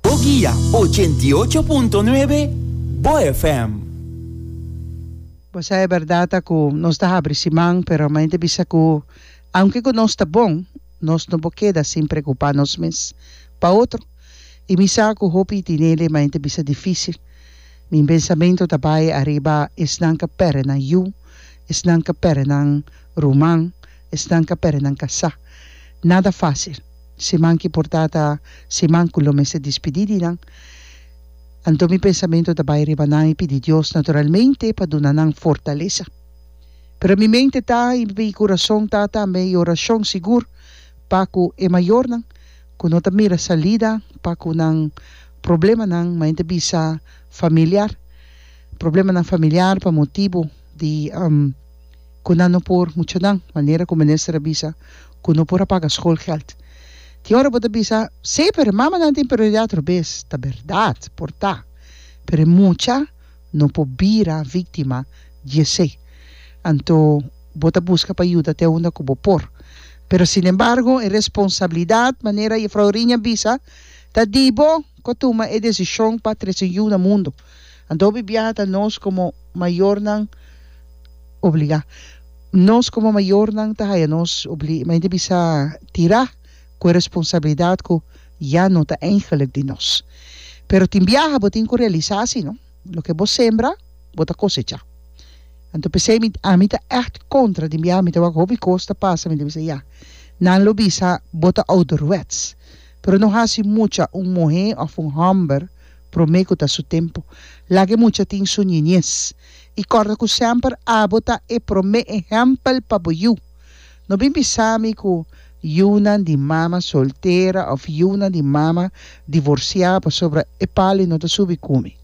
Bo guia ochenta i ocho punto nuebe Bo FM. Bo sa e bèrdat a ku nos ta habri siman, pero main ta bisa ku aunke ku nos ta bon, nos no por keda sin preokupá nos mes pa otro. I mi sa ku hopi tin ele, main ta bisa difísil. Mi pensamentu ta bai ariba esnan ka pèrdè nan yu, esnan ka pèrdè nan ruman, esnan ka pèrdè nan kasá. Nada fásil. Siman ki por ta ta siman ku lo mester dispidí di nan. Anto mi pensamentu ta bai riba nan i pidi Dios naturalmente pa duna nan fortalesa. Pero mi mente ta i mi kurason ta tambe i orashon sigur pa ku e mayornan ku no ta mira salida pa ku nan problemanan main ta bisa familiar problemanan familiar pa motibu di. ku nan no por mucha nan manera ku minister a bisa ku no por a paga skolgèld. Tin ora bo ta bisa, Sí, pero e mamanan tin prioridat robes. Ta bèrdat, por ta. Pero e mucha no por bira víktima di esei. Anto bo ta buska pa yuda te unda ku bo por. Pero sinembargo, e responsabilidat, manera Jefrouw Riña a bisa, ta di bo ku a tuma e desishon pa trese yu na mundu. Anto hopi biaha ta nos como mayornan obliga. Nos como mayornan ta haya nos obli mayornan bisa tira cu e responsabilidad cu ya no ta eigenlijk di nos. Pero tin biaha bo tin cu realisa si no, loke bo sembra bo ta cosecha. Anto pesey mi ami ta echt contra tin biaha mi ta wak hopi cos ta pasa mi ta bisa ya nan lo bisa bo ta ouderwets pero no haci mucha un muhe of un homber Promé ku ta su tempu, laga e mucha tin su niñes. I kòrda ku semper abo ta e promé ehèmpel pa bo yu. No bin bisa mi ku yunan di mama soltera òf yunan di mama divorsiá pasobra e pali no ta subi kumi.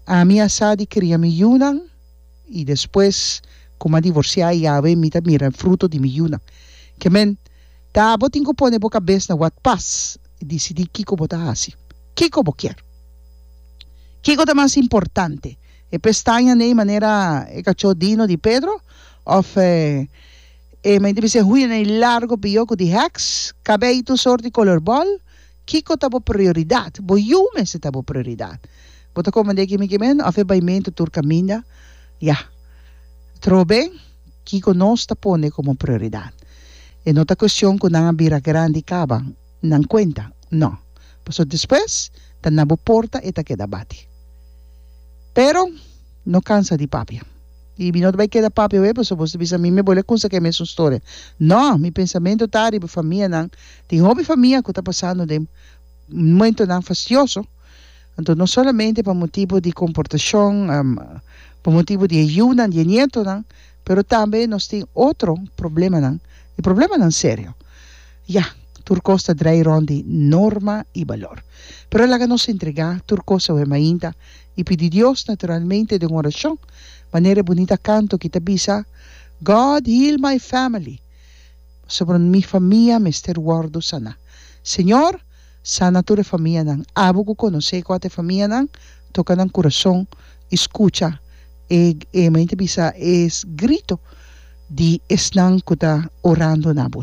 Ami a sa di kria mi yunan i despues ku mi a divorsiá yawe mi ta mira e fruto di mi yunan. Ke men. Ta bo tin ku pone bo kabes na wòrd pas i disidí kiko bo ta hasi. Kiko bo kier? Kiko ta mas importante, e pestaña nei manera e kachó Dino di Pedro òf e men di bisé huña nei largo bió ku di hèks, kabei tur sort di kolor bòl? Kiko ta bo prioridat? Bo yu mester ta bo prioridat. Bo ta komand'é kimi kimen òf e baimentu tur kaminda? Yah. Trobe. Kiko nos ta pone komo prioridat? E no ta kuestion ku nan a bira grandi kaba nan kuenta, no, pasobra despues ta na bo porta e ta keda bati. Pero no kansa di papia. I mi no ta bai keda papia awor pasobra bo ta bisa mi mi a bole konsak'é e mesun storia. No, mi pensamentu ta riba e famianan. Tin hopi famia ku ta pasando den momentunan fastioso. Anto no solamente pa motibu di komportashon, pa motibu di e yunan, di e nietonan, pero tambe nos tin otro problemanan, i problemanan serio. Ya, tur kos ta drai rònt di norma i balor. Pero laga nos entregá tur kos awe mainta i pidi Dios, naturalmente den un orashon, manera e bunita kanto ki ta bisa, God heal my family, pasobra mi famia mester wòrdu saná. Señor! Sana tur e famianan. Abo ku konosé kua ta e famianan, toka nan kurason i skucha e e maña ta bisa e grito di esnan ku ta orando na bo.